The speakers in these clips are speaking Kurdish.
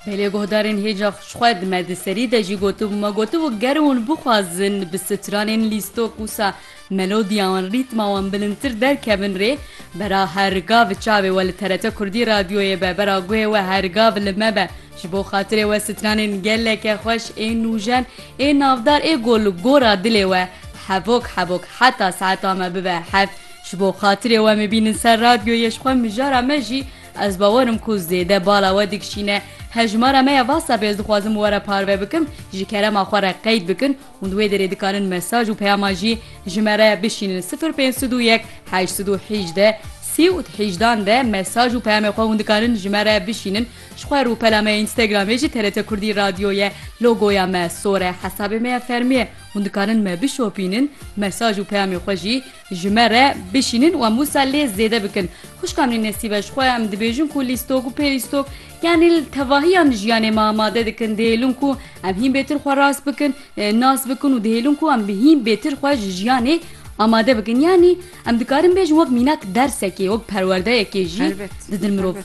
Belê guhdarên hêja xwe di me di serî de jî gotibû me gotibû ger hûn bixwazin bi stranên lîstok wisa melodiya wan rîtma wan bilindtir derkevin rê bera her gav çavê we li TRT kurdî radyoyê be bera guhê we her gav li me be ji bo xatirê we stranên geleke xweş ê nûjen ê navdar ê ku li gora dilê we hevok hevok heta saeta me bibe hev ji bo xatirê we me bînin ser radyoyê ji xwe mijara me jî Ez bawer im ku zêde bala we dikişîne. Hejmara me ya Whatsappê ez dixwazim we re parve bikim, ji kerema xwe re qeyd bikin û di wê derê dikanin mesaj û peyama jî ji me re bişînin sifir pênc sed û yek heşt sed û hîjde sî û hîjdan de mesaj û peyamê xwe hûn dikanin ji me re bişînin ji xwe rûpela me ya Instagramê jî TRT Kurdî Radyo ye logoya me sor e hesabê me ya fermî ye hûn dikanin me bişopînin mesaj û peyamê xwe jî Ji me re bişînin û em wisa lê zêde bikin. Xwişka min ê Nesîbe ji xwe em dibêjin ku lîstok û pêlîstok yanî li tevahiyan jiyanê me amade dikin. Dihêlin ku em hîn bêtir xwe rast bikin, nas bikin û dihêlin ku em hîn bêtir xwe ji jiyanê amade bikin. Yanî em dikarin bêjin wek mînak dersekê, wek perwerdeyekê jî didin mirov.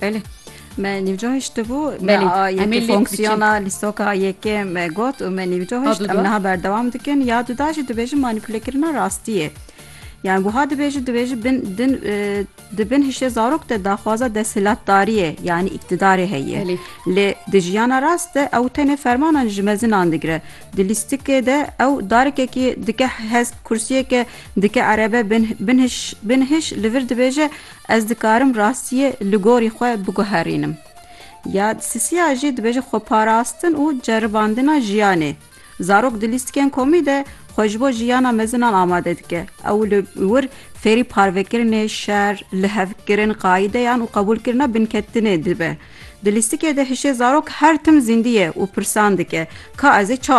Belê. Me nîvco hiştibû me yekê fonksiyona lîstoka yekê me got û me nîvco hişt em niha berdewam dikin ya duda jî dibêjin manîpulekirina rastiyê. Yani buha dibêji dibêji bin din di bin hişê zarok de daxwaza desthilatdariyê yani iktidarê heye. Lê di jiyana rast de ew tenê fermanan ji mezinan digire. Di lîstikê de ew darekekî dike hez kursiyeke dike erebe bin hiş li vir dibêje Ez dikarim rastiyê li gorî xwe biguherînim. Ya Sisiya jî dibêje xweparastin û ceribandina jiyanê. Zarok di lîstikên komî de xwe ji bo jiyana mezinan amade dike. Ew li wir fêrî parvekirinê, şer, lihevkirin, qaideyan û qebûlkirina binketinê dibe. Di lîstikê de hişê zarok her tim zîndî ye û pirsan dike, Ka ez ê ça